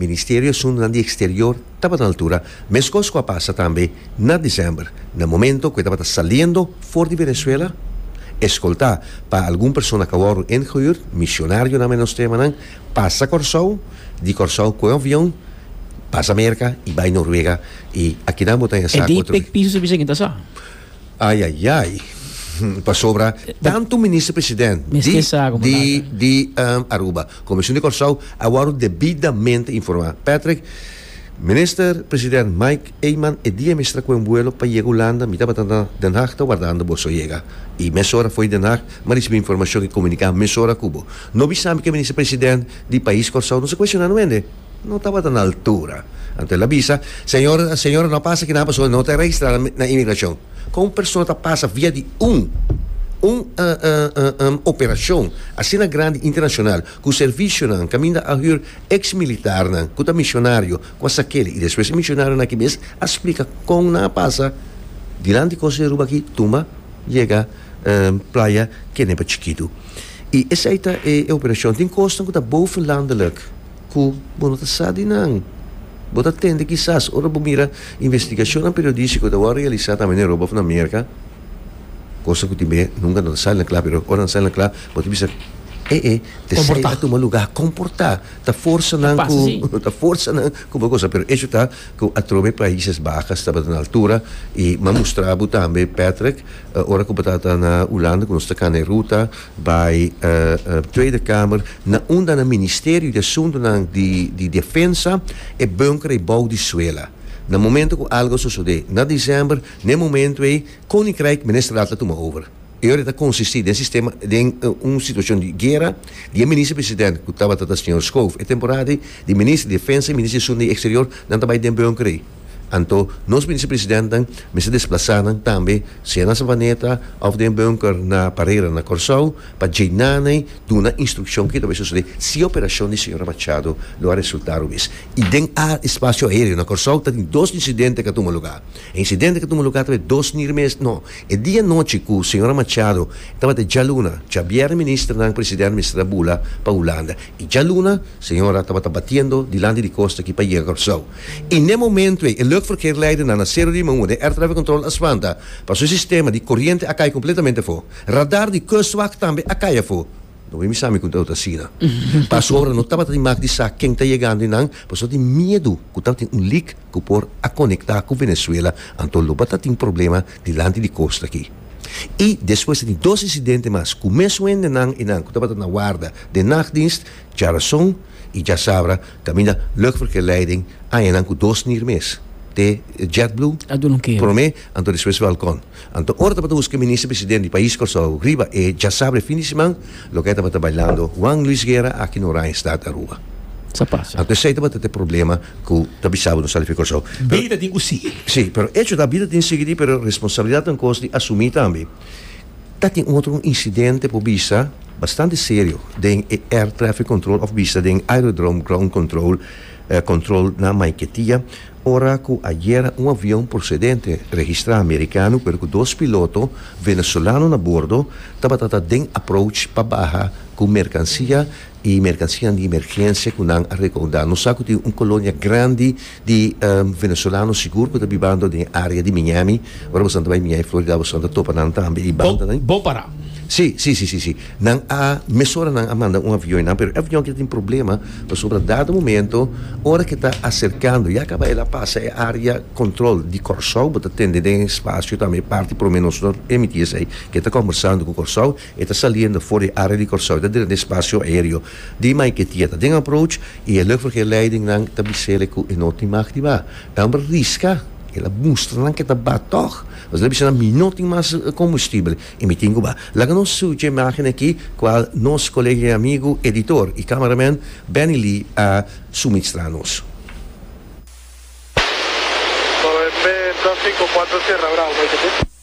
Ministerio Asuntunan di Eksterior tabata na altura, meskos ku a pasa tambe na desèmber, na momento ku e tabata saliendo for di Venezuela, eskoltá pa algun persona geworden ingehuurd, misionarionan menos tremanan, pasa Kòrsou, di Kòrsou koe un avion, pasa Merka i bai Noruega, i akinan bo ta yasa ku otro. E di pek piso su bisa kin ta sa. Ayayay pasobra tantu minister president di Aruba como esun di Corsou a wòrdu debidamente informá. Patrick, minister president Mike Eman e dia mester a kohe un vuelo pa yega Hulanda, mi tabata na Den Haag ta wardando boso a yega i mesora fo'i Den Haag mi a risibí informashon i komuniká mesora ku bo. No bisa mi ku e minister president di pais Kòrsou no sa kueshoná no hende. No tabata na altura. Anto el a bisa, Señor, señor, no a pasa kina persona no ta registrá na inmigrashon. Kon un persona ta pasa via di un un operashon asina grandi internashonal ku servishonan kaminda a hür eks militarnan ku ta mishonario ku a sa kele i despues e mishonario aki mes a splika kon nan a pasa dilanti di Costa di Aruba aki tumba yega playa Kenepa chikitu. I esei ta e operashon. Tin kosnan ku ta bovenlandelik. ku bo no ta sa di nan. Bo ta tende kisas ora bo mira investigashonnan periodístiko ku ta wòrdu realisá tambe den Europa òf na Merka, kosa ku tin bidé nunka no ta sali na kla, pero ora nan sali na kla bo ta bisa, e'e, esei a tuma lugá. Komportá ta forsa nan ku, ta forsa nan ku bo kos sa, pero echo ta ku atrobe Paises Bajas tabata na altura i m'ha mustrá bo tambe Patrick, ora ku bo tabata na Ulanda ku nos ta kana e ruta, Bay Tweede Kamer na unda na Ministerio di Asuntonan di Defensa e bunker ei bou di suela. Na momento cu algo a sosode na december, na e momento ei Koninkrijk Ministerraad ta tuma over. E ora ei ta consisti den sistema den un situacion di guera di e Minister President cu tabata ta Señor Schoof e temporada ei di Minister di Defensa y Minister di Asuntonan Exterior nan ta bay den bunker ei. Anto nos bisepresidentenan mester desplasá nan tambe, sea na Savaneta òf den bunker na Parera na Kòrsou, pa dje nan ei duna instrukshon ke ta bay sosodé si e operashon di señora Machado lo a resultá robes. I den a espasio aéreo na Kòrsou ta tin dos insidente ke a tuma lugá. E insidente ke tuma lugá ta bay dos nir mes no, e di anochi ku señora Machado tabata djaluna, djabièrnè minister nan presidente mester a bula pa Hulanda i djaluna señora tabata batiendo dilanti di kosta aki pa yega Kòrsou. I n'e momento ei e luchtverkeerleidernan a Cerro Limon wou den airtrafficcontrol a spanta pa su sistema di coriente a cay completamente afo. Radar di Kustwacht tambe a cay afo. No wen bisa mi cu deu ta asina. Pasobra no tabata di mak di sa ken ta yegando y nan pasobra di miedu cu tabatin un leak cu por a conecta cu Venezuela anto lo batatin problema dilanti di costa aki. Y despues ta tin dos incidente mas cu mes wendenan y nan cu tabata na warda den nachtdienst dja rason y dja sabra Kaminda luchtverkeerleiding añanan ku dos nier mes, te JetBlue promé, anto despues Falcon. Anto ora tabata huska Minister President di pais Kòrsou riba e djasabra e fin di siman, loke ai tabata bailando Juan Luis Guerra aki na Oranjestad Aruba. Anto esei tabata ta e problema ku ta bisabo nos Alife Kòrsou. Bida tin ku sigui. Sí, pero echo ta bida tin sigui di pero responsabilidatnan kos di asumí tambe. Ta tin otro un incidente por bisa bastante serio den e Air Traffic Control of bisa den Aerodrome Ground Control control na Maiquetia ora cu ayera un avion procedente registra Americano pero cu dos piloto Venezolano na bordo tabata ta den approach pa baha cu mercancia y mercancianan di emergencia cu nan a recauda nos sa cu tin un colonia grandi Di Venezolano sigur ku ta bibando den e área di Miami. Ora boso ta bai Miami, Florida, boso ta topa nan tambe i bandanan. Bo para. Sí, sí, sí, sí. Nan a, mesora nan a manda un avion nan, pero e avion aki a tin problema pasobra dado momento ora ke ta aserkando, ya kaba el a pasa e área kòntròl di Kòrsou, bo ta tende den e spasio tambe e parti promé nos no permití esei, ke ta kòmbersando ku Kòrsou E ta saliendo for di area di Kòrsou, e ta dren di spasio aereo di Maiquetía, ta den approach y e luchtverkeerleidingnan ta bisel'e cu e no tin mag di ba. E homber riska, el a mustra nan cu e ta ba tog, pasobra el a bisa nan, mi no tin mas combustible y mi tin cu ba. Laga nos suchi e imágennan aki cual nos colega y amigo, editor y cameraman Benny Lee a suminstra nos. Tras cinco, cuatro, cerra, bravo, Maiquetía.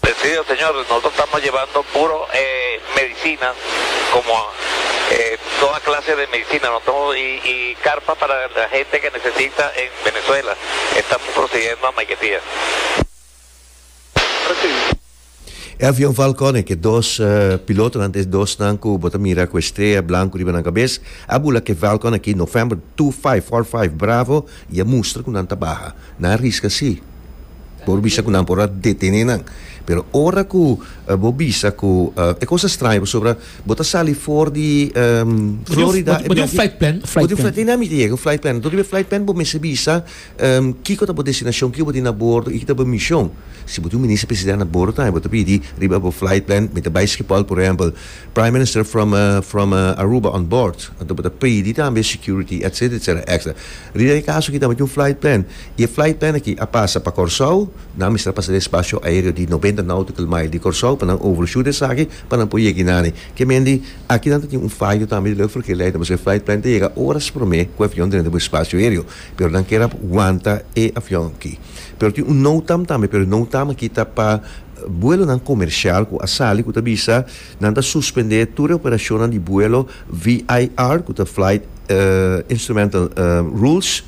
Presidio señor nos lo tama jebando puro e medicina como e toda clase de medicina no tamo y y carpa para la gente que necesita en Venezuela estamos prosiguiendo a Maiquetía. E avion Falcon e ke dos pilotonan ta e dosnan ku bo ta mira ku e strea blanku riba nan kabes a bula ke Falcon aki November two five four five Bravo i a mustra ku nan ta baha. Nan a riska si. Por bisa ku nan por a detene nan. Pero ora ku bo bisa ku e kosa straño pasobra bo ta sali for di Florida. Bo tin un flight plan, un flight plan. Dina mita yega un flight plan. Enton riba e flight plan bo mester bisa kiko ta bo destinashon, kiko bo tin na bordo i ki ta bo mishon. Si bo tin un minister presidente na bordo tambe bo ta pidi riba bo flight plan, mi ta bai Skipol por ehèmpel, Prime Minister from from Aruba on board. Enton bo ta pidi tambe security etcetera etcetera extra. Riba e kaso aki tambe tin un flight plan. Y e flight plan aki a pasa pa Corsou, nan a mester a pasa den e spacio aereo di noventa nautical mile di Corsou pa nan overshoot esaki pa nan por yega inane. Ke men di, aki nan ta tin un fayo tambe di Luchtverkeer Leiden, pasobra e flight plan ta yega oras prome ku e avion ta denter bo e spacio aereo, pero nan kerap wanta e avion aki. Pero tin un NOTAM tambe, pero e NOTAM aki ta pa buelonan comercial ku a sali ku ta bisa nan ta suspende tur e operacionnan di buelo VIR, ku ta Flight Instrumental Rules,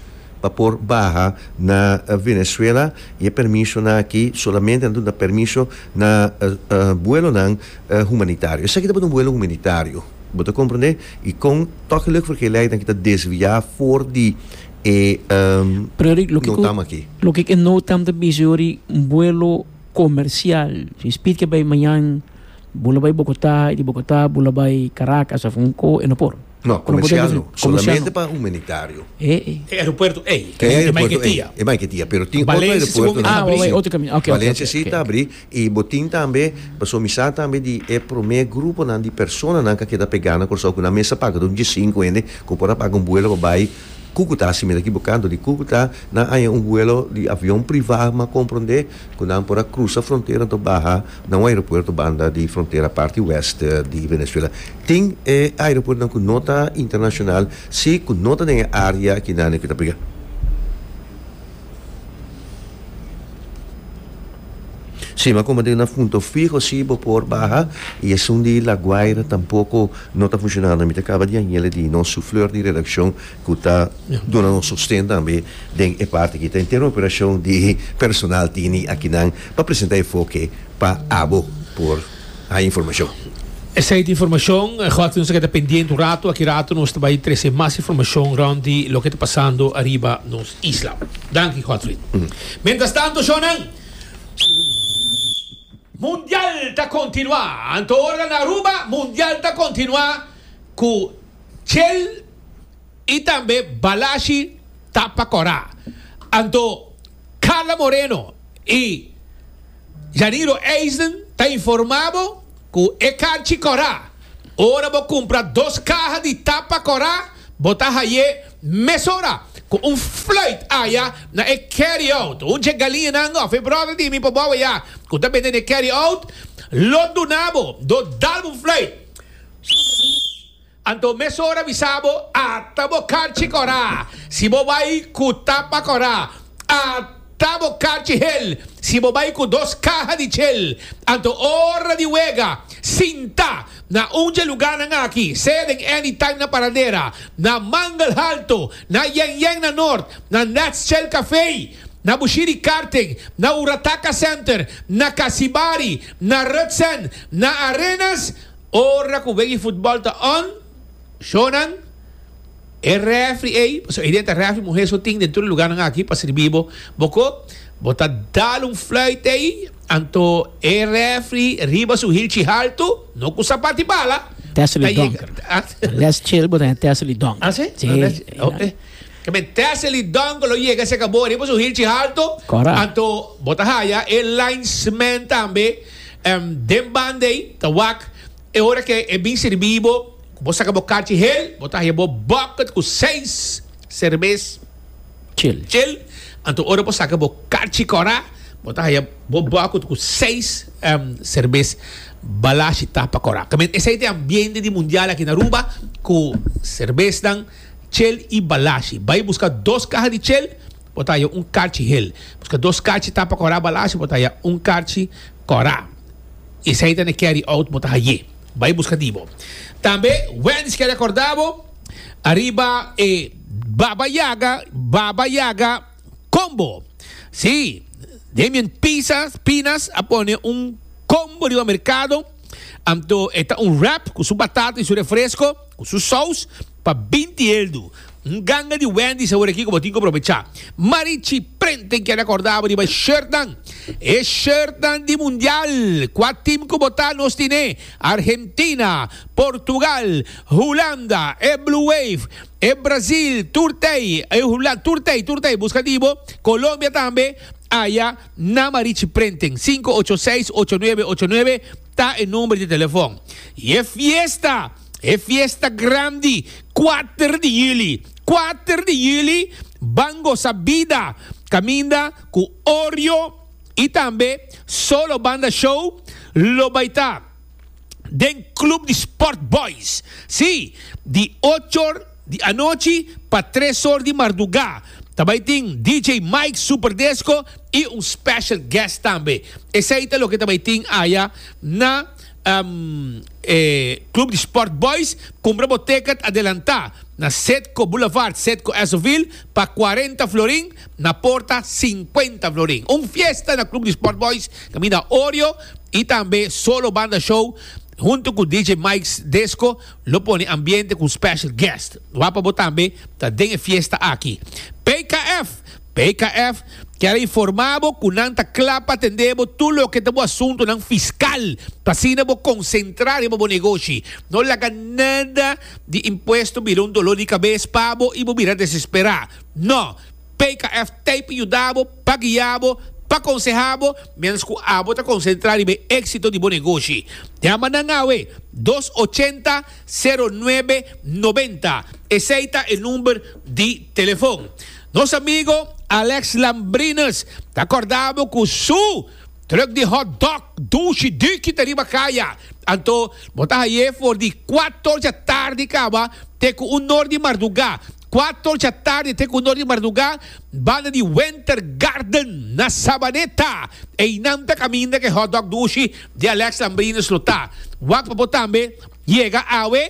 pa por baha na Venezuela y e permisonan aki solamente nan duna permiso na buelonan humanitario. Esaki tabata un buelo humanitario, bo ta comprende? Y con toki lek for ke lei aki ta desvia for di e NOTAM aki. Loke ku e NOTAM ta bisa yo di un buelo comercial. Si Speed ke bai mañan bo lo bai Bogota y di Bogota bo lo bai Caracas of un ko e no por. No, comercialno. Solamente pa humanitario. E aeropuerto ey. E aeropuerto ey. E Maiquetia. Pero tin otro aeropuerto. Ah, waway, otro caminda. Ok, ok, ok. Valencia si ta abri. Y bo tin tambe, paso mi sa tambe di e prome gruponan di personanan ca keda pega na Curaçao cu nan mes a paga don diescinco hende cu por a paga un vuelo pa bay Cucuta, si mi ta ekibo canto di Cucuta, nan haya un vuelo di avion priva, mi a comprende cu nan por a crusa frontera anto baha. Na un aeropuerto banda di frontera parti west di Venezuela tin e aeropuertonan cu no ta internacional si cu no ta den e area akinane cu ta briga sima como den nan funto fiho si bo por baha y esun di La Guaira tampoco no ta funcionando mi ta caba di hañele di nos souffleur di redaccion ku ta duna nos sosten tambe den e parti ki ta entero operashon di personal tini akinan pa presenta enfoke pa abo por haña informashon. Esei ta informashon gua nos ta keda pendiente un ratu, aki ratu nos ta bai trese mas informashon rònt di loke ta pasando ariba nos isla. Danki Godfrey. Mientras tanto shònan, Mundial ta kontinuá, anto ora na Aruba Mundial ta kontinuá ku Chel. y tambe Balashi ta pa Cora. Anto Carla Moreno y Yaniro Eisen ta informa bo cu e carchi Cora, ora bo cumpra dos caha di tapa Cora bo ta haye mesora cu un fluit aya na e carry out. Un dje galiñanan of e brother di mi pa bobo ya cu ta bende n'e carry out lo duna bo do dalbo un fluit. Anto mesora bisa bo ata bo karchi kora si bo bai ku tapa kora ata bo karchi hel si bo bai ku dos kaha di chel anto ora di wega sinta na un dje luganan aki sea den Anytime na Paradera na Mangle Halto na Yen Yen na Nort na Nats Chel Café na Bushiri Karting na Urataka Center na Kasibari na Rutsen na Arenas Ora ku wega di futbòl ta on, shownan, e rèfri ei, pasobra ei den ta rèfri muhé so tin den tur e lugarnan aki pa sirbi bo, bo ko, bo ta dal un flùit ei, anto e rèfri riba su hilchi haltu, no ku sapat di bala, ta yega. Así? Oke. Tamen Tessely Donker lo yega serka bo riba su hilchi haltu, anto bo ta haya e linesman tambe. Den banda ei ta wak e ora ke e bin sirbi bo ku bo saka bo karchi hel, bo ta haya bo bòkket ku seis serbes chil. Anto ora bo saka bo karchi kòrá, bo ta haya bo bòkket ku seis serbes balashi tapa kòrá. Tambe esei ta e ambiente di mundial aki na Aruba ku serbesnan chil i balashi. Bai buska dos kaha di chil. Bo ta haya un karchi hel. Buska dos karchi tapa kòrá balá si bo ta haya un karchi kòrá. Esei ta na e carry out bo ta hayé. Bai buska di bo. Tambe Wendy's ke rekordá bo ariba e Baba Yaga Baba Yaga Combo. Sí, Damian Pisas Pinas a pone un combo riba merkado anto e ta un wrap ku su batata i su refresko ku su sous. Pa binti eldu. Un ganga di Wendy's awor aki ku bo tin ku probecha. Marichi prent tin keda korda bo riba e shirtnan. E shirtnan di mundial ku a tim ku bo ta nos tine Argentina, Portugal, Hulanda, e Blue Wave, e Brazil, Turtei, e Hulanda, Turtei, Turtei buska di bo, Colombia tambe aya na Marichi Printing. Sinku ocho seis ocho nuebe ocho nuebe ta e number di telefon. Y e fiesta. E fiesta grandi kuater di juli. Kuater di juli ban gosa bida kaminda ku Orjo i tambe Solo Banda Show lo bai ta den Club di Sport Boys. Sí, di ochor di anochi pa tresor di mardugá. Ta bai tin DJ Mike Super Disco i un special guest tambe. Esei ta loke ta bai tin aya na. e Club di Sport Boys cumpra bo ticket adelanta na Cedco Boulevard, Cedco Esoville, pa cuarenta florin, na porta cincuenta florin. Un fiesta na Club di Sport Boys caminda Oreo y tambe Solo Banda Show hunto cu DJ Mike's Disco lo pone ambiente cu special guest. Wak pa bo tambe ta den e fiesta aki. PKF. PKF kier a informa bo cu nan ta cla pa atende bo tur loke ta bo asuntonan fiscal pa asina bo concentra riba bo negoshi. No laga nada di impuesto bira un dolor di cabes pa bo y bo bira desespera. No! PKF t'ey pa yuda bo, pa guia bo, pa conseha bo mientras cu abo ta concentra riba e exito di bo negoshi. Yama nan awe dos ochenta sero nuebe noventa. Esey ta e number di telefon. Nos amigo Alex Lambrinus ta corda bo cu su truck di hot dog dushi duki ta riba caya. Anto bo ta haye for di cuator dja tardi caba te cu un nor di marduga. Cuator dja tardi te cu un nor di marduga banda di Winter Garden na Sabaneta. Eynan ta caminda cu e hot dog dushi di Alex Lambrinus lo ta. Wak pa bo tambe yega awe.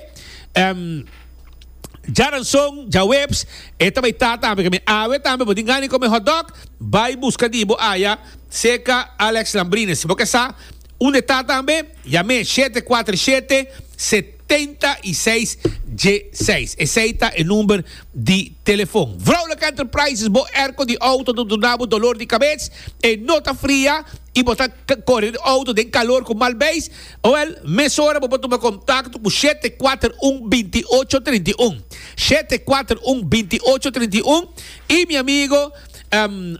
Djaranson, djaweps, e ta bai ta tambe kami. Awe tambe bo tin gana di kome hot dog? Bai buska di bo aya cerca Alex Lambrines. Si bo ke sa un e ta tambe, yam'é shete kuater shete, setenta i seis djeseis. Esei ta e number di telefon. Vrolijk Enterprises, bo airco di auto ta duna bo dolor di kabes? E no ta fria? y bo ta core di auto den calor cu mal beis? Oel, mesora bo por tuma contacto cu shete cuater un binti ocho trinti un, shete cuater un binti ocho trinti un, y mi amigo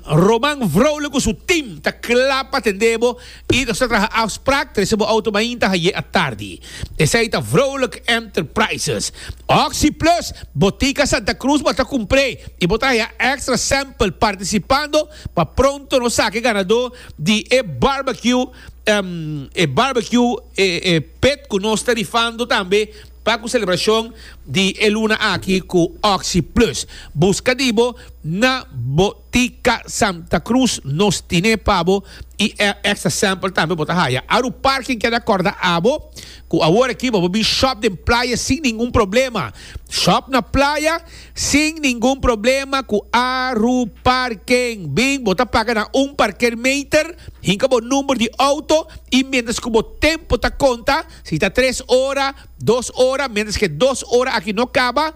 Roman Vrolijk cu su team ta cla pa tende bo y nos ta traha afspraak trece bo auto mainta haye atardi. Esey ta Vrolijk Enterprises. Oxy Plus, Botica Santa Cruz bo ta cumpre y bo ta haya extra sample participando Pa pronto nos saki e ganadó di e barbecue e barbecue e pet cu nos ta rifando tambe pa cu celebracion di e luna aki cu Oxi Plus. Busca di bo na Botica Santa Cruz nos tine pa bo y e extra sample tambe bo ta haya. Aru Parking keda corda abo cu awor aki bo por bin shop den playa sin ningun problema. Shop na playa. Sin ningun problema ku Aru Parking. Bin, bo ta paga na un parkeermeter, hinka bo number di outo i mientras ku bo tempo ta konta, si ta tres ora, dos ora, mientras ke dos ora aki no kaba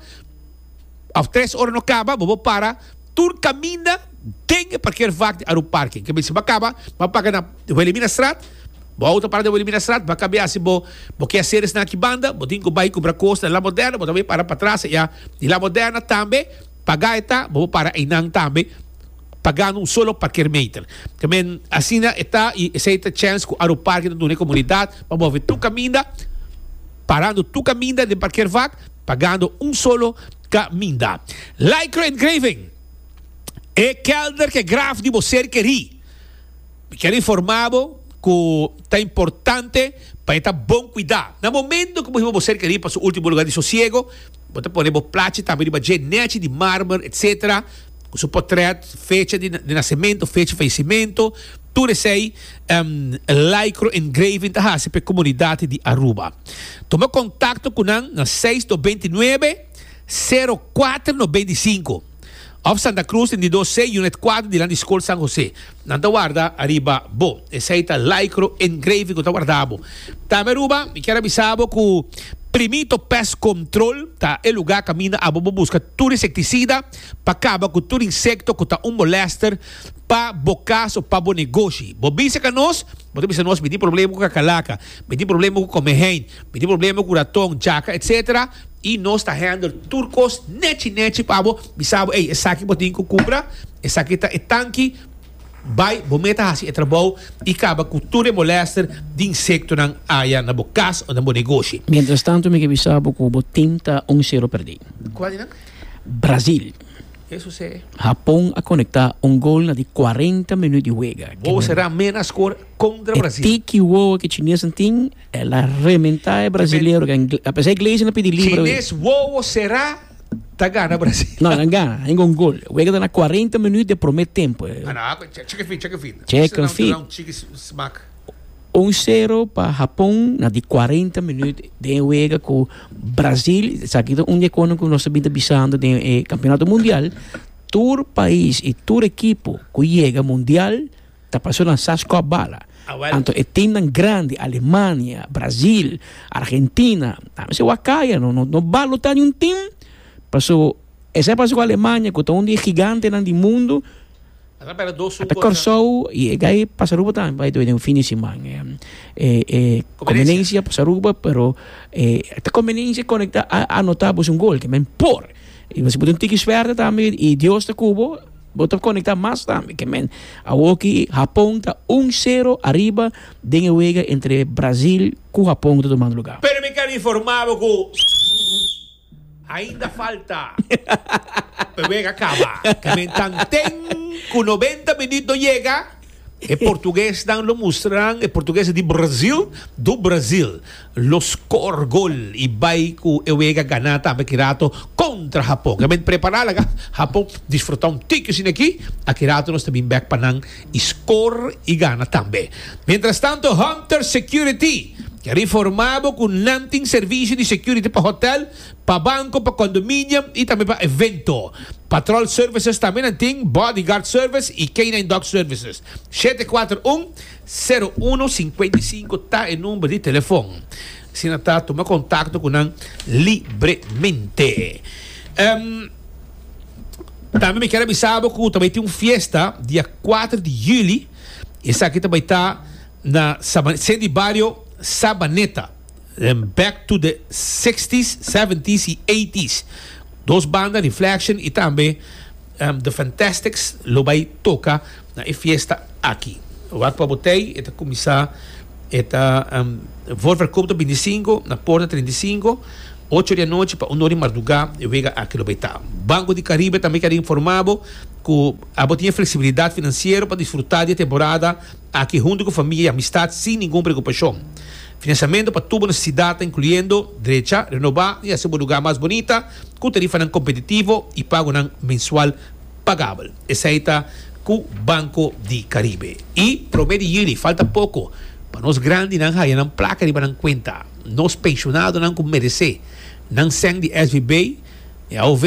òf tres ora no kaba, bo por para tur kaminda den e parkeervak di Aru Parking. Ke bisba kaba, bo a paga na Wilhelminastraat. Bo auto para den bo elimina strat, ba kabia si bo bo ke hacer esnan aki banda, bo tin ku bai kumpra kos na La Moderna, bo ta bai para patras eya di La Moderna tambe, paga e ta, bo bo para einan tambe, pagando un solo parkeermeter. Te men asina e ta i esei ta chèns ku Aeroparke ta duna e komunidat pa move tur kaminda, parando tur kaminda den parkeervak, pagando un solo kaminda. Lycra Engraving, e kelder ke graf di bo ser kerí. Mi kier informa bo cu ta importante pa e ta bon cuida. Na momento cu bo hiba bo cerca riba su ultimo lugar di sosiego, bo ta pone bo plachi tambe riba dje nechi di marmer, etc. Cu su potret, fecha di nacemento, fecha di falecimento, tur esey lycro engraving ta haci pa e comunidad di Aruba. Tuma contacto cu nan na seis dos beintinuebe, sero cuater no beintisinco. Of Santa Cruz den di dos C, Unit Cuatro dilanti di School San Jose. Nan ta warda ariba bo. Esei ta lycro engraving cu ta warda bo. Tambe Aruba, mi kier a bisa bo cu Primito Pest Control ta e lugar caminda abo bo busca tur insecticida pa caba cu tur insecto cu ta un molester pa bo cas of pa bo negoshi. Bo bisa ca nos, bo ta bisa nos mi tin problema cu cacalaca, mi tin problema cu come hen, Mi tin problema cu raton, jaca, etc. Y nos ta handle tur cos nechi nechi pa bo. Mi sa bo, ey, esaki bo tin cu cumpra, esaki ta e tanki, bay, bo meta haci e trabou y caba cu tur e molester di insectonan aya na bo cas o na bo negoshi. Mientras tanto mi ke bisa bo cu bo team ta un cero perdi. Cua di nan? Brazil. Ke sucede? Japon a conecta un gol na di cuarenta minut di wega. Wowo sera mena score contra Brazil. E tiki wowo ke chinesnan tin. El a rementa e brasileiro. A pesa e Gleison a pidi libra. Chines wowo sera ta gana Brasil. No, nan gana. Ainda un gol. E wega ta na cuarenta minut di e prome tempo. Chicken feet, chicken feet. Chicken feet. Un chiki smak. Un sero pa Hapon na di cuarenta minut den e wega cu Brasil. Esaki ta un di e cono cu nos a bin ta bisando den e campeonato mundial. Tur pais y tur ekipo cu yega mundial. Ta pasó na sas kòp bala. Anto e timnan grandi, Alemania, Brasil, Argentina, ta mester wak kaya. No, no, no balo ta niun tim, paso esei pasa ku Alemania ku ta un di e gigantenan di mundu, a ta Kòrsou i e gai pasa Aruba tambe bai den un fin di siman. E, e kombinensia pasa Aruba pero e ta kombinensia konektá a anotá bos un gol, ke men por. I bos a pudi un tiki swerte tambe i Dios ta ku bo. Bo ta konektá mas tambe ke men. Awoki Hapon ta un sero ariba den e wega entre Brazil ku Hapon ku ta tumando lugá. Pero mi ta informá bo ku ainda falta pa e wega kaba. Ke men tanten ku noventa minüt no yega. E portuguesnan lo mustranan e portugues di Brasil do Brasil lo scor gol y bay cu e wega gana tambe ki rato contra Japon. Nan bin prepara laga Japon disfruta un tiki sin aki a ki rato nos ta bin back pa nan y scor y gana tambe. Mientras tanto Hunter Security, Riformabo cu nan tin servicio di security pa hotel, Pa banko, pa kondominium i tambe pa evento. Patrol Services tambe nan tin Bodyguard Service i Canine Dog Services. Shete kuater un, seru uno, sinkuenta i sinku ta e number di telefon. Asina ta tuma kontakto ku nan libremente. Em, Tambe mi kier a bisa bo ku ta bai tin un fiesta dia kuater di juli. Esaki ta bai ta na Saba, Sen di Bario Sabaneta. den back to the sixties, seventies y eighties. Dos banda Reflection y tambe The Fantastics lo bay toca na e fiesta aki. Wak pa bo tey, e ta cuminsa, e ta for verkoopt op bintisinco na Porta treinta y cinco, ocho di anochi pa uno di marduga, e wega aki lo bay ta. Banco di Caribe tambe quiere informa bo cu abo tin e flexibilidad financiero pa disfruta di e temporada aki hunto cu familia y amistad sin ningun preocupacion. Finansiamentu pa tur bo nesesidat ta inkluyendo drecha, renobá i hasi bo lugá mas bunita ku tarifanan kompetitivo i pagunan mensual pagabel. Esei ta ku Banko di Karibe. I promé di yuli falta poko pa nos grandinan haña nan plaka riba nan kuenta. Nos penshonadonan ku meresé nan sèn di SVB i AOV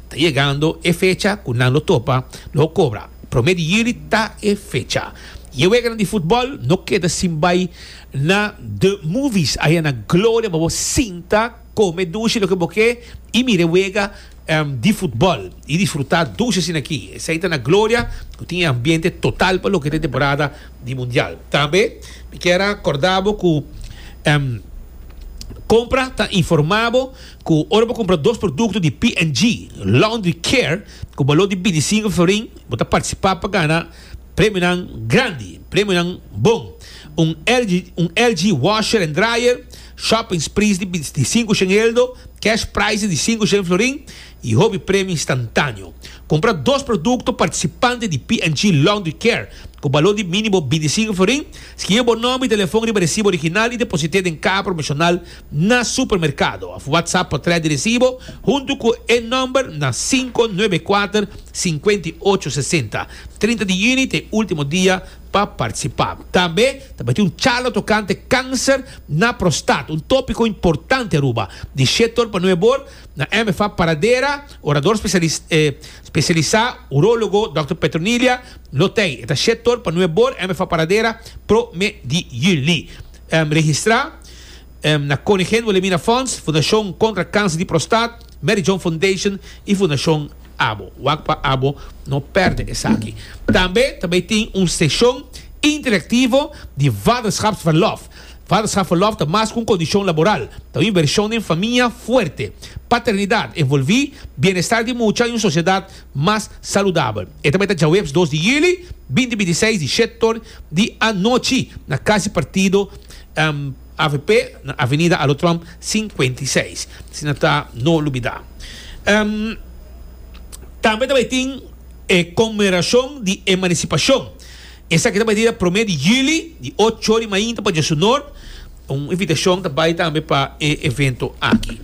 ta yegando e fecha ku nan lo topa lo kobra. Promé di yuli ta e fecha. Yeueganan di futbòl no keda sin bai. Na the movies a hena gloria pa bo sinta, come dushi loke bo ke y mira e wega di futbol y disfruta dushi asina aki. Esai ta na gloria cu tin e ambiente total pa loke ta e temporada di mundial. Tambe mi kier a corda bo cu compra ta informa bo cu ora bo compra dos producto di P&G Laundry Care cu balor di binticinco florin bo ta participa pa gana Premionan grandi, premionan bon, un LG un LG washer and dryer, shopping sprees di di sinku shen eldo, cash prizes di sinku shen florin i hopi premio instantaneo. Kumpra dos produkto partisipante di P and G Laundry Care ku baló di mínimo binti sinku florin, skibi bo nòmber i telefòn riba resibo original i deposit'é den kaha promeshonal. Na supermerkado òf WhatsApp pa trae di resibo huntu ku e nòmber na sinku nuebe e kuater sinkuenta i ocho sesenta. Trinta di yüni ta e último dia pa partisipá. Tambe tabatin un charla tokante kanser na prostat, un tópiko importante Aruba, di Shetor pa nueve bor na MFA Paradera, orador spesialisá urólogo dòkter Petronilia Lotey. E ta Shetor pa nueve bor MFA Paradera prome di yüli. Registrá. na Konigen Wilhelmina Fonds, Fundashon Kontra Kanser di Prostat, Mary John Foundation i Fundashon abo. Wak pa abo no pèrdè esaki. Tambe ta bay tin un seshon interaktivo di Vaderschapsverlof. Vaderschapsverlof ta mas ku un kondishon laboral, ta un invershon den famia fuerte, paternidat envolví, bienestar di mucha i un sosiedat mas saludabel. E ta bay ta djaweps dos di yuli binti binti seis di shèt tor di anochi na Kasi Partido. avp na Avenida Alo Trump sinkuenta i seis, si nan ta no lubidá. Tambe ta bai tin e konmemorashon di emansipashon. Esaki ta bai dia promé di juli, di ocho ori mainta pa dia su nort. Un invitashon ta bai tambe pa e evento aki.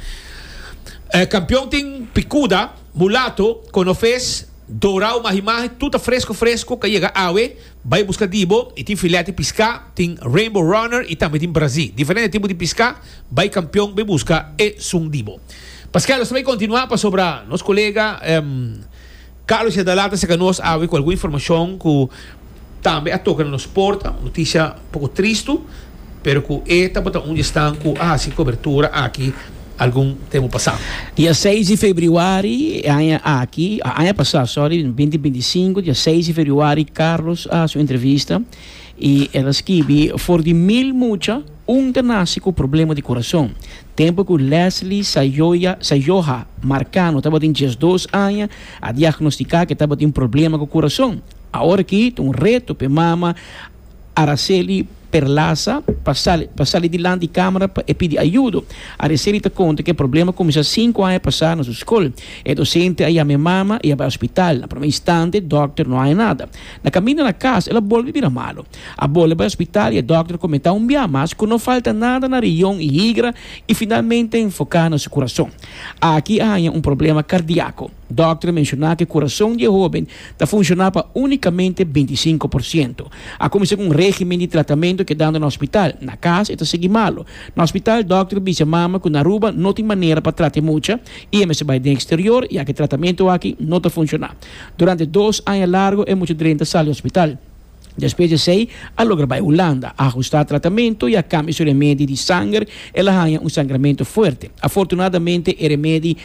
E kampion tin pikuda, mulato, konofes, dorau, mahi mahi, tur ta fresko fresko, ka yega awe. Bai buska dibo y tin filet di pisca, tin rainbow runner y tambe tin brazi. Diferente tipo di pisca, bai campeon be buska esun dibo. Paskel nos ta bai continua pasobra nos colega Carlos Yadala ta seca nos awe cu algun informacion cu tambe a toca na nos porta, noticia poco tristu Pero cu e tabata un di esnan cu a haci cobertura aki algun tempo pasá. Dia seis di febriuari e aña aki, aña pasá, sorry, binti binti sinku, dia seis di febriuari, Carlos a haci un entrevista y el a skibi, For di mil mucha, un ta naci cu problema di corazon. Tempo cu Leslie Sayoya, Sayoha, Marcano tabatin diesdos aña, a diagnosticá cu e tabatin problema cu corazon. Aworaki ta un reto p'e mama. Araceli Perlaza pa sali pa sali dilanti di camera pa e pidi ayudo. Araceli ta conta cu e problema cuminsa cinco aña pasa na su scol. E docente a yama e mama y a bai hospital. Na prome instante dokter no haña nada. Na caminda na cas el a bolbe bira malo. A bolbe bai hospital y e dokter a comenta un bia mas cu no falta nada na rion y higra y finalmente a enfoca na su curason. Aki a haña un problema cardiaco. Dòkter menshoná ku e kurason di e hóben ta funshoná pa únikamente bintisinko por siento. A kuminsá ku un régimen di tratamentu kedando na hospital. Na kas e ta sigui malu. Na hospital dòkter bisa e mama ku na Aruba no tin manera pa trata e mucha i e mester bai den eksterior ya ku e tratamentu aki no ta funshoná. Durante dos aña largu e mucha drenta sali di hospital. Despues di esei a logra bai Hulanda, a hustá tratamentu i a kambia su remedi di sanger. El a haña un sangramentu fuerte. Afortunadamente e remedi.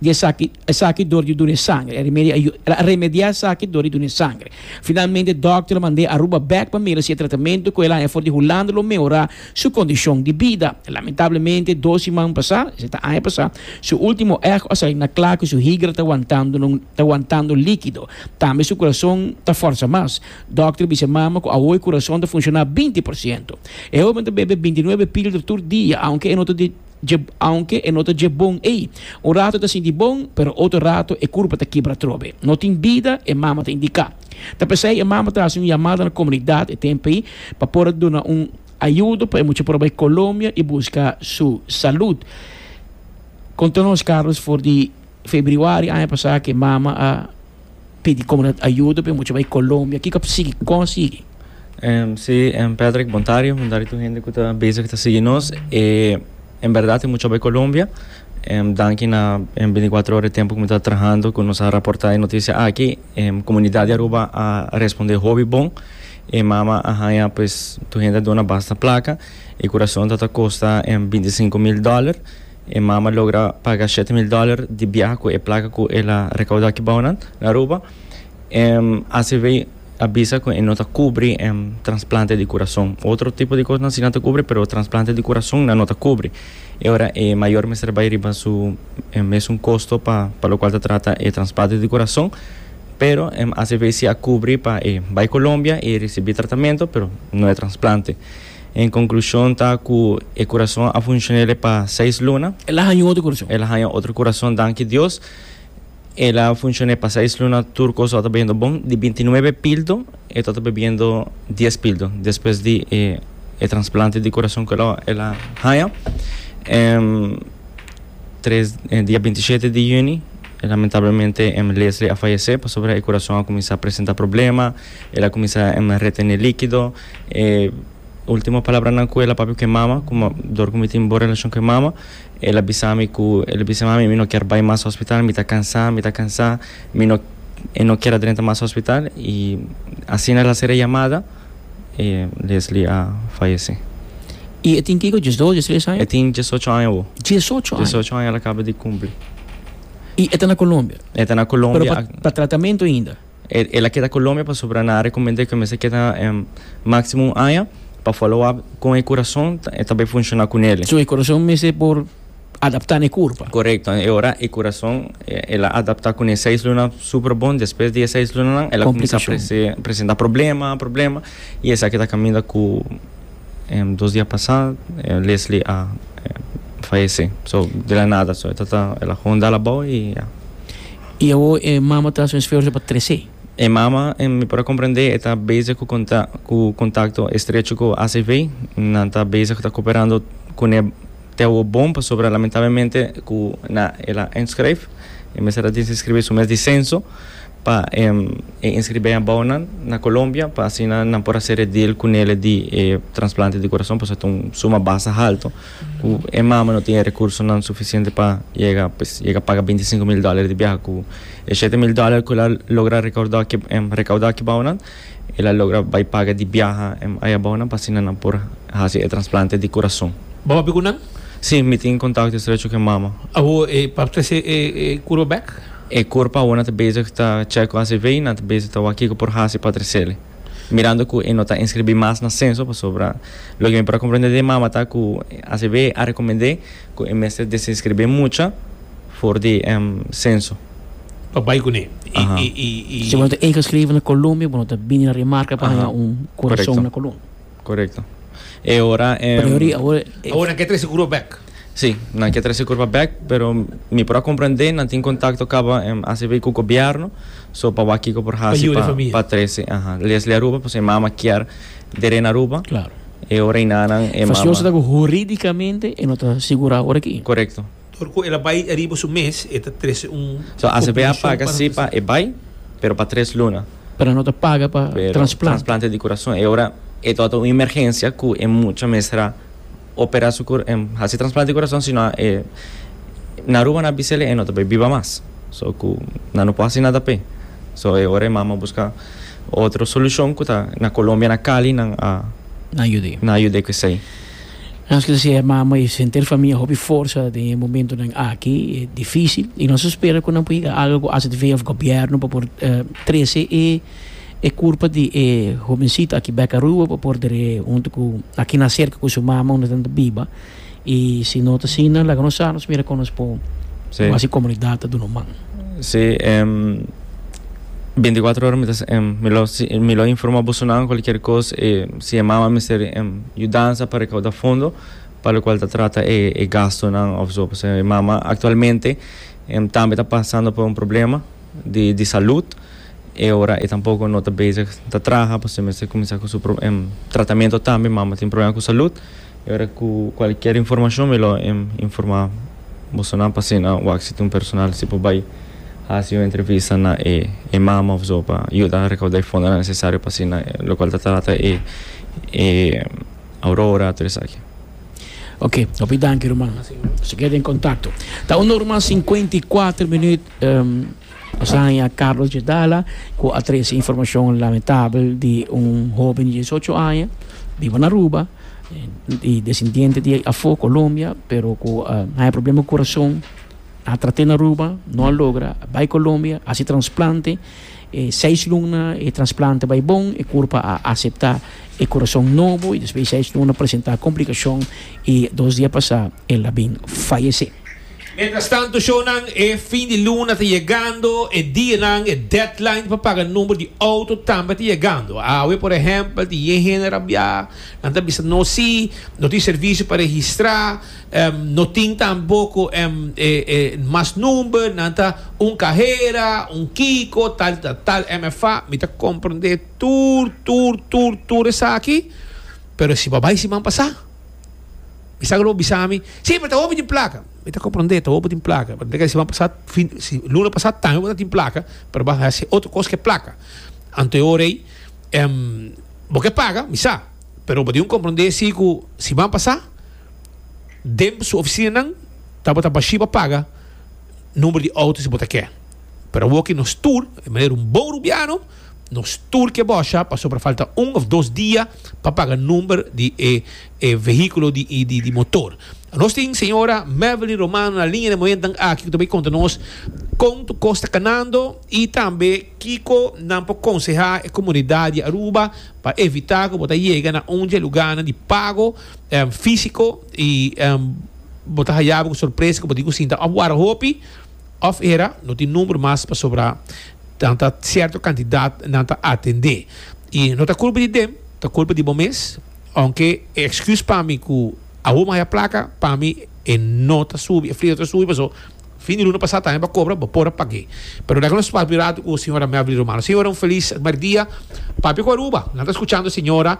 di esaki, esaki dor di duna e sangre, el a remediá esaki dor di duna e sangre. Finalmente, dòkter a mand'é Aruba bèk pa mira si e tratamento ku el a haña for di Hulanda lo mehorá su kondishon di bida. Lamentablemente, dos siman pasá, esei ta aña pasá, su último echo a salí na kla ku su higra ta wantando no ta wantando líkido, tambe su kurason ta fòrsa mas. Dòkter bisa e mama ku awor e kurason ta funshoná binti por siento. E hóben ta bebe binti nuebe píldor tur dia, aunke e no ta. dje aunke e no ta dje bon ei. Un rato e ta sinti bon, pero otro rato e kurpa ta kibra trobe. No tin bida, e mama ta indiká. Ta pesei e mama ta hasi un yamada na komunidat e tempu ei pa por a duna un ayudo pa e mucha por a bai Kolombia i buska su salud. Konta nos Carlos for di febriuari aña pasá ku e mama a. Pidi comunidad ayudo p'e mucha bay Colombia, kico a por sigui cosi? Si, Patrick, bontaria, bontaria tur hende cu ta bezig ta sigui nos. En berdad e mucha a bay Colombia, danki na e binticuatro ora di tempo cu mi ta trahando cu nos a raporta e noticia aki. E comunidad di Aruba a responde hopi bon, e mama a haya pues tur hende a duna basta placa, e curacion ta ta costa binticinco mil dollar. E mama logra paga shete mil dòler di biaha ku e plaka ku el a rekaudá kibou nan na Aruba. E acv a bisa ku e no ta kubri transplante di kurason. Otro tipo di kosnan si nan ta kubri pero transplante di kurason nan no ta kubri. E ora e mayor mester bai riba su mesun kosto pa pa lokual ta trata e transplante di kurason. Pero acv si a kubri pa e bai Colombia i risibí tratamentu pero no e transplante. En conclusion ta cu e curason a funcionele pa seis luna. El a haña otro curason. El a haña otro curason danki Dios. El a funcione pa seis luna tur cosa lo ta biendo bon. Di binti nuebe pildo e ta ta bebiendo dies pildo despues di e e transplante di curason cu el a haña. Em tres e dia binti shete di juni lamentablemente em Leslie a fayece pasobra e curason a cuminsa presenta problema. El a cuminsa em retene liquido. E ultimo palabranan ku el a papia ku e mama, kuma dor ku mi tin bon relashon ku e mama, el a bisa mi ku el a bisa mami mi no kier bai mas hospital, mi ta kansa, mi ta kansa, mi no e no kier a drenta mas hospital i asina el a sera e yamada i Lesli a fayese. I e tin kiko diesdos, diestres aña? E tin diesocho aña awo. Diesocho aña? Diesocho aña el a kaba di kumpli. I e ta na Colombia? E ta na Colombia. Pero pa pa tratamentu ainda? El a keda Colombia pasobra nan a recomend'é cu e mester keda maximo un aña pa follow up con e curason ta bay funciona cu nele. So e curason mester por adapta n'e curpa. Corecto, e ora e curason el a adapta cu n'e seis luna super bon, despues di e seis lunanan el a cuminsa presenta problema, problema y esaki ta caminda cu dos dia pasa Leslie a fayece, so de la nada, so e tata el a hondal abao y ya. I awo e mama ta haci un esfuerzo pa trece. E mama, mi por a comprende, e ta bezig cu conta cu contacto estrecho cu ACV. Nan ta bezig ta cooperando cune te awo bon, pasobra lamentablemente cu na el a inschrijf, e mester a desinscribi su mes di censo pa e inscribi abao nan na Colombia pa asina nan por a sere deel cu nele di e transplante di corazon, pasobra ta un suma basta halto. Ku e mama no tin e rekursonan sufisiente pa yega, pues yega paga binti sinku mil dòler di biaha. Ku e shete mil dòler ku el a logra rekaudá rekaudá kibou nan, el a logra bai paga di biaha ayabou nan pa asina nan por hasi e transplante di kurason. Bo hopi ku nan? Sí, mi tin kontakto estrecho ku e mama. Awo e papita si e kurba bèk? E kurpa awor nan ta bezig ta chèk ku HCV i nan ta bezig ta wak kiko por hasi pa tresele. Mirando cu e no ta inscribi mas na censo pasobra loke mi por a comprende di e mama ta cu ACB a recomende cu e mester desinscribi e mucha for di e censo. Pa bay cune y. Si bo no ta ingescribi na Colombia bo no ta bini na Rimarca pa haña un curacion na Colombia. Korekto. E ora e. Priori awor e. Awor nan ke trese kurba bek. Si, nan ke trese kurba bek, pero mi por a komprendé, nan tin kontakto kaba acb ku gobièrnu, so pa wak kiko por hasi pa pa trese, aha, Leslie Aruba, pasobra e mama kier dere na Aruba. Klaro. E ora ei nanan e mama. Fasiosnan ku huridikamente e no ta sigurá awor aki. Korekto. Dor cu el a bay riba su mes, e ta trece un compensacion pa nos. So ACP a paga si pa e bay, pero pa tres luna. Pero no ta paga pa transplante. Pero transplante di curason. E ora e tabata un emergencia cu e mucha mester a opera su haci transplante di curason, sino e na Aruba na bisa el e no ta bay biba mas. So cu nan no por haci nada p'e. So e ora e mama a busca otro solucion cu ta na Colombia na Cali nan a. Nan yud'e. Nan a yud'e cu esey. Nos lo siña e mama i sentir famia hopi forsa den e momentunan aki difísil i nos ta spera ku nan por higa algu ku AZV òf gobièrnu pa por trese e e kurpa di e hobensitu aki bèk Aruba pa por dere huntu ku aki na serka ku su mama unda nan ta biba i si no ta asina laga nos sa nos mira kon nos por hasi komunidat ta duna un man. Sí. Binticuatro ora mi ta sa, em, mi lo, si, mi lo informa boso nan cualkier cos, e, si e mama mester, em, yudansa pa recauda fondo pa locual ta trata e, e gastonan of zo, pasobra e mama actualmente, em, tambe ta pasando por un problema di, di salud, e ora e tampoco no ta bezig ta traha, pasobra e mester cuminsa cu su pro, em, tratamento tambe, mama tin problema cu salud, e ora cu cualkier informacion mi lo, em, informa. Boso nan pasina wak si ta un personal si por bai hasi un entrevista na e e mama of zo pa yuda rekauda e fondonan nesesario pa asina lo kual ta trata e e Aurora tur esaki. Oke, hopi danki ruman. Nos a keda den kontakto. Ta un ora mas sinkuenta i kuater minüt. Nos a haña Carlos Jedala cu a trece informacion lamentabel di un hoben di diesocho aña biba na Aruba, y descendiente di afo Colombia pero cu a haña problema di corazon, a trate na Aruba no a logra, a bay Colombia a haci transplante, e seis luna e transplante bay bon e curpa a acepta e corazon nobo y despues di seis luna presenta complicacion y dos dia pasa el a bin fayece. Mientras tanto shonan e fin di luna ta yegando, e dianan, e deadline pa paga number di auto tambe ta yegando. Awe por ehempel tin yen hende rabia, nan ta bisa no si, no tin servicio pa registra, em, no tin tampoco em, e, e mas number, nan ta un cajera, un kiko, tal di tal, tal MFA. Mi ta comprende tur, tur, tur, tur esaki, pero si pa bay siman pasa. Mi sa lo bisa mi, sí, pero ta hopi tin placa. Mi ta comprende, ta hopi tin placa. Pero te si pasat, fin, si luna pasat también hopi tin placa, pero vas a hacer otro cosa que placa. Anto yo rey, um, bo que paga, mi sa. Pero bo tin comprende si cu si van pasat, den su oficina nan, ta bo ta bashi pa paga numero di auto si bo ta ke. Pero awoki nos tur, e manera un bon rubiano, Nos tur ke bòsha pasobra falta un òf dos dia pa paga number di e e vehíkulo di di motor. Nos tin señora Mevelyn Romano na liña den momentonan aki ku ta bai konta nos kon tu kos ta kanando i tambe kiko nan por konsehá e komunidat di Aruba pa evitá ku bo ta yega na un dje lugánan di pago físiko i bo ta haya bo ku sorpresa ku bo tin ku sinta òf wòrdu hopi. Of era no tin number mas pasobra nan ta cierto cantidad nan ta atende y no ta culpa di dem ta culpa di bo mes aunke e excuse pa mi cu awor maya placa pa mi e no ta subi e fleto ta subi paso fin di luna pasa tambe ba cobra bo por a page pero dai cu nos papia rato cu señora Melvely Romano señora un feliz mercdia papia cu Aruba nan ta scuchando señora.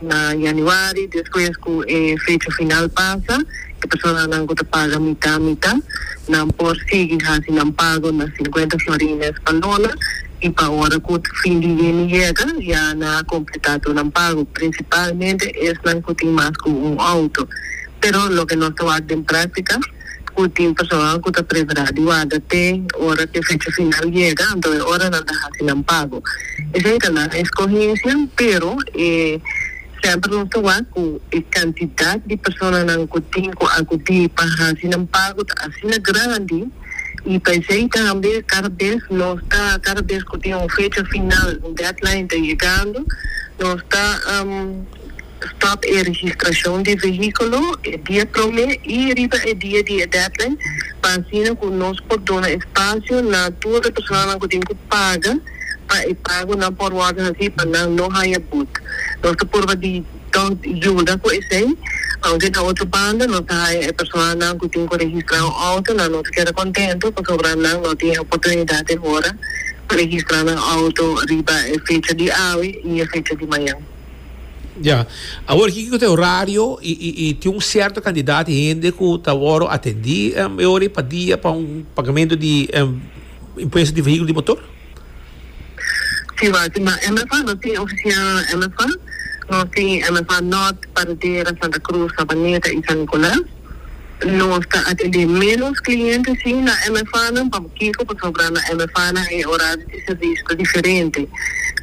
Na Januari, despues cu e fecha final pasa, e personanan cu ta paga mita mita, nan por sigui haci nan pago na cincuenta florines pa luna, y pa ora cu fin di yeni yega, ya nan a completa tur nan pago, principalmente esnan cu tin mas cu un auto. Pero loke nos ta wak den practica. ku tin personal ku ta prepará di warda te ora ku e fecha final yega, anto e ora nan ta hasi nan pago. Esei ta nan eskohensia, pero e semper nos ta wak ku e kantidat di personanan ku tin ku akudí pa hasi nan pago ta asina grandi i pa esei tambe kada bes nos ta, kada bes ku tin un fecha final, un deadline ta yegando, nos ta. Stap e registrashon di vehíkulo e dia promé i riba e dia di e deadline pa asina ku nos por duna espasio na tur e personanan ku tin ku paga pa e pagunan por wòrdu hasí pa nan no haña but. Nos ta purba di tòg yuda ku esei, aunke den otro banda nos ta haña e personanan ku tin ku registrá un outo na nos keda kontentu pasobra nan no tin e oportunidat e hora pa registrá nan outo riba e fecha di awe i e fecha di mañan. Ya. Awor kiko ku ta e horario i i i tin un sierto kantidat di hende ku ta wòrdu atendí em e ora pa dia pa un pagamentu di em impuesto di vehíkulo di motor? Si wak si ma MFA no tin ofisia MFA. Nos tin MFA Nort, Paradera, Santa Krus, Sabaneta i San Nikolas. Nos ta atendé ménos kliente sí na MFAnan. Pampokiko? Pasobra na MFAnan e orario di servisio ta diferente.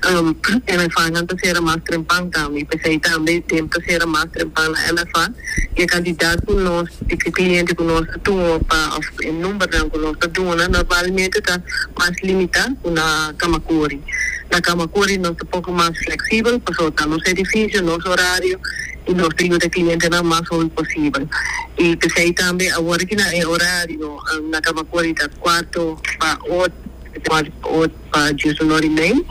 MFAnan ta sera mas trempan tambe i p'esei tambe tempu ta sera mas trempan na MFA i e kantidat ku nos, di kliente ku nos ta tuma pa òf e numbernan ku nos ta duna normalmente ta mas limitá ku na kama kuri. Na kama kuri nos ta poku mas fleksibel pasobra ta nos edifisio, nos orario. y nos trino ta e clientenan mas hopi posibel. Y p'esey tambe awor ki nan e horario nan caba cori ta cuarto pa ocho, cuarto pa ocho pa djis un ora y mey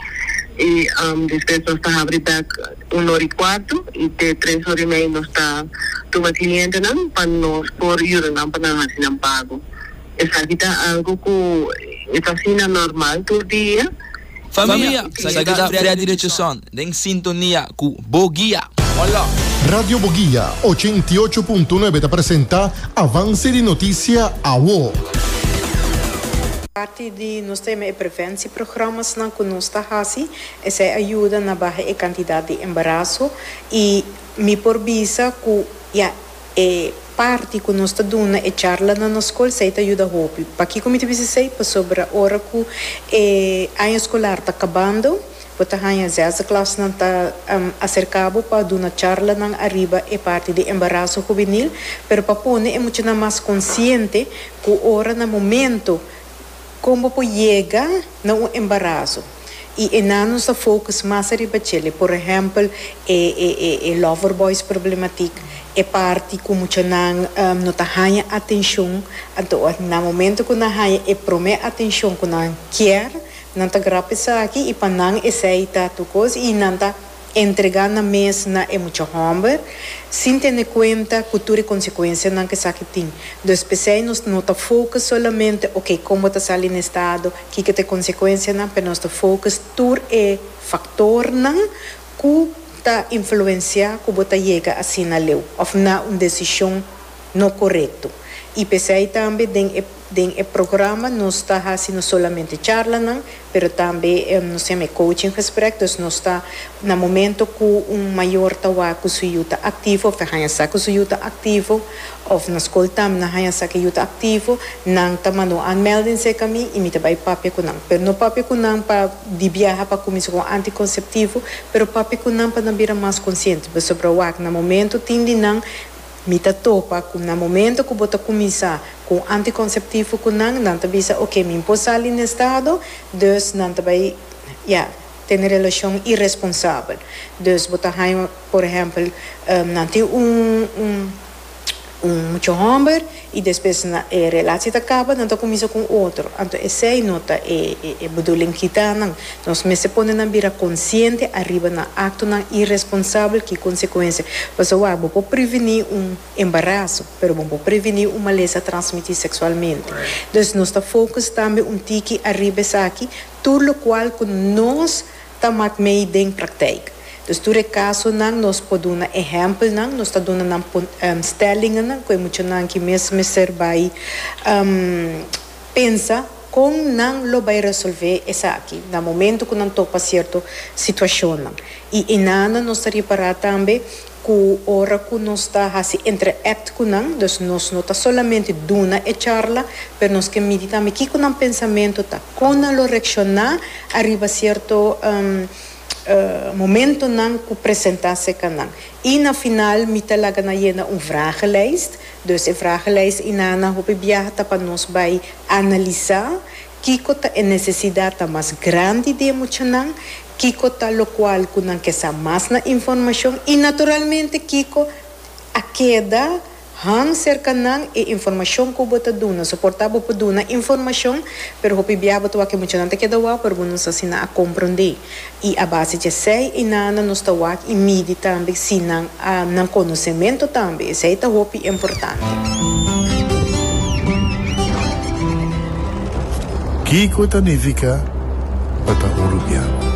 y despues nos ta habri bek un ora y cuarto y te tres ora y mey nos ta tuma clientenan pa nos por yuda nan pa nan haci nan pago. Esaki ta algo cu e ta asina normal tur dia. Famia, sa ke ta brea direcion den sintonia cu Bo Guia. Hola! Radio Boguia ochenta i ocho punto nuebe ta presenta Avance di Noticia Awo. Parti di nos tema e prevensieprogramasnan cu nos ta haci, esey a yuda na baha e cantidad di embarazo y mi por bisa cu ya. E parti ku nos ta duna e charla na nos skol sei ta yuda hopi. Pakiko mi ta bisa esei? Pasobra ora ku e año skolar ta kabando, bo ta haña zesde klasnan ta aserká bo pa duna charlanan ariba e parti di embaraso hubenil, pero pa pone e muchanan mas konsiente ku ora na momentu Kon bo por yega na un embaraso y enan nos a focus mas ariba chele, por ehempel e e lover boys problematic, e parti cu muchanan no ta haya atencion, anto na momento cu nan haya e prome atencion cu nan kier, nan ta grap esaki y pa nan esey ta tur cos y nan ta. entregá nan mes na e mucha hòmber, sin tene kuenta ku tur e konsekuensianan ku esaki tin. Dus p'esei nos no ta fokus solamente oke kon bo ta sali na e stado, kiko ta e konsekuensianan, pero nos ta fokus tur e faktornan ku ta influensiá ku bo ta yega asina leu òf na un desishon no korekto. I p'esei tambe den e. Den e programa nos ta hasi no solamente charlanan, pero tambe nos tem e coaching gesprek, dus nos ta na momento cu un mayor ta wak cu su yu ta activo of ta haña sa cu su yu ta activo of na school tambe nan haña sa cu e yu ta activo, nan ta manda un aanmelding cerca mi y mi ta bay papia cu nan, pero no papia cu nan pa di biaha pa cuminsa cu anticonceptivo, pero papia cu nan pa nan bira mas consciente, pasobra wak na momento tin di nan. Mi ta topa cu na momento cu bo ta cuminsa cu un anticonceptivo cu nan, nan ta bisa ok, mi por sali n'e estado, dus nan ta bay ya tene relacion irresponsabel. Dus bo ta haya, por ehempel, nan tin un mucho homber I despues na e relaci ta kaba nan ta kuminsa ku un otro, anto esei no ta e e bedoeling kita nan. Nos mester pone nan bira konsiente ariba nan aktonan iresponsabel. Ki konsekuensia? Pasobra wak bo por prevení un embaraso, pero bo no por prevení un malesa transmití seksualmente. Dus nos ta fokus tambe un tiki ariba esaki, tur lokual ku nos. ta mat mei den praktijk. Dus tur e kasonan nos por duna ehèmpelnan, nos ta duna nan stèlingennan ku e muchanan ki mes mester bai pensa kon nan lo bai resolvé esaki na momentu ku nan topa sierto situashonnan. I enana nos ta ripará tambe ku ora ku nos ta hasi interact ku nan, dus nos no ta solamente duna e charla, pero nos ke midi tambe kiko nan pensamentu ta, kon nan lo reakshoná ariba sierto momentonan ku presentá serka nan. I na final mi ta laga nan yena un vragenlijst, dus e vragenlijst i nan na hopi biaha ta pa nos bai analisá. Kiko ta e necesidadnan mas grandi di e muchanan, kiko ta locual cu nan ke sa mas na informacion y naturalmente kiko a keda han cerca nan e informacion cu bo ta duna. So por ta bo por duna informacion pero hopi bia bo ta wak cu e muchanan ta keda wao pero bo no sa si nan a comprende. I a base di esei i nana nos ta wak i midi tambe si nan a nan konosementu tambe. Esei ta hopi importante. Kiko ta nifiká pa ta urubiano?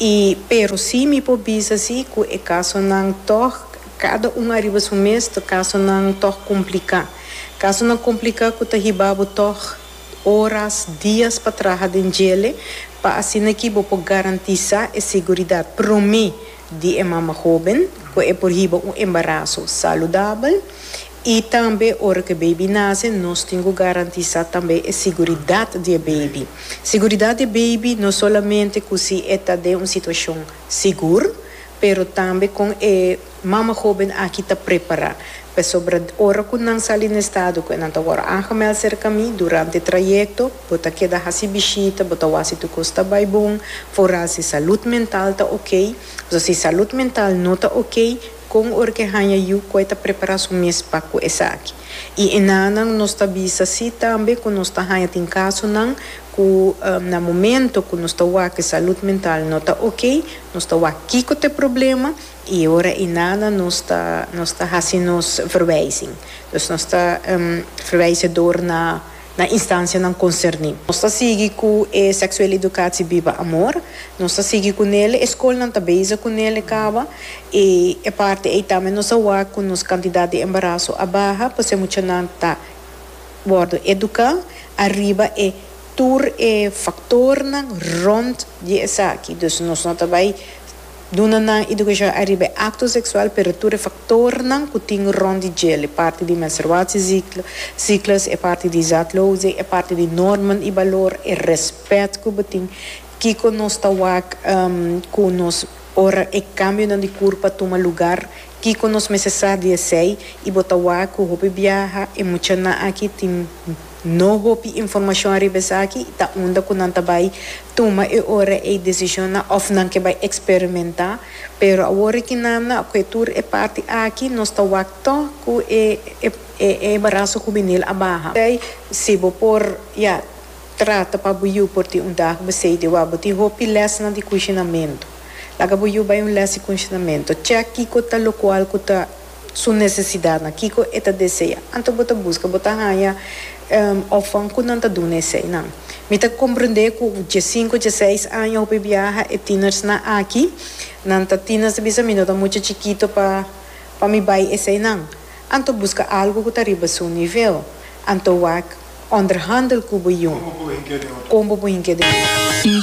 I pero si mi por bisa si ku e kasonan tòg kada un ariba su mes ta kasonan tòg kompliká. Kasonan kompliká ku ta hibá bo tòg oras, dias pa traha den djele pa asina aki bo por garantisá e seguridat promé di e mama hóben ku e por hiba un embaraso saludabel. I tambe ora ku e beibi nase nos tin ku garantisá tambe e siguridat di e beibi. Siguridat di e beibi no solamente ku si e ta den un situashon sigur, pero tambe kon e mama hóben aki ta prepará. Pasobra ora ku nan sali na e stado ku nan ta wòrdu aangemèld serka mi, durante e trayekto bo ta keda hasi bishita, bo ta wak si tur kos ta bai bon, foral si salud mental ta oké. Pasobra si salud mental no ta oké, Kon ora ke haña yu koe ta prepará su mes pa ku esaki? I enanan nos ta bisa si tambe ku nos ta haña tin kasonan ku na momento ku nos ta wak e salud mental no ta okey, nos ta wak kiko ta e problema i e ora enanan nos ta nos ta hasi nos verwijzing. Dus nos ta verwijze dor na. na instancianan concerni. Nos ta sigui cu e Sexuele Educatie Biba Amor, nos ta sigui cu nele, e scolnan ta bezig cu nele caba y e parti ey tambe nos a wak cu nos cantidad di embaraso a baha p'esey muchanan ta wordo educa ariba e tur e factornan rond di esaki, dus nos no ta bay. Duna nan idukashon ariba e akto seksual pero tur e faktornan ku tin rònt di djel, e parti di menstruasiesiklus, e parti di zatloosing, e parti di norman i balor, e rèspèt ku bo tin, kiko nos ta wak ku nos ora e kambionan di kurpa tuma lugar, kiko nos mester sa di esei i bo ta wak ku hopi biaha e muchanan aki tin. No hopi informashon riba esaki i ta unda ku nan ta bai tuma e ora ei desishonnan òf nan ke bai eksperimentá. Pero awor ki nan na kue tur e parti aki nos ta wak tò ku e e embaraso hubenil a baha. P'esei si bo por ya trata pa bo yu por tin un dag bo sei di wak bo tin hopi lèsnan di kunshinamentu. Laga bo yu bai un lès di kunshinamentu. Chèk kiko ta lokual ku ta su necesidadnan, kico e ta desea, anto bo ta busca, bo ta haya orfan cu nan ta duna esey nan. Mi ta comprende cu dje cinco, dje seis aña hopi biaha e tienersnan aki, nan ta tiener ta bisa mi no ta mucha chikito pa pa mi bay esey nan, anto busca algo cu ta riba su nivel, anto wak onderhandel cu bo jun, con bo bo hinke den jun.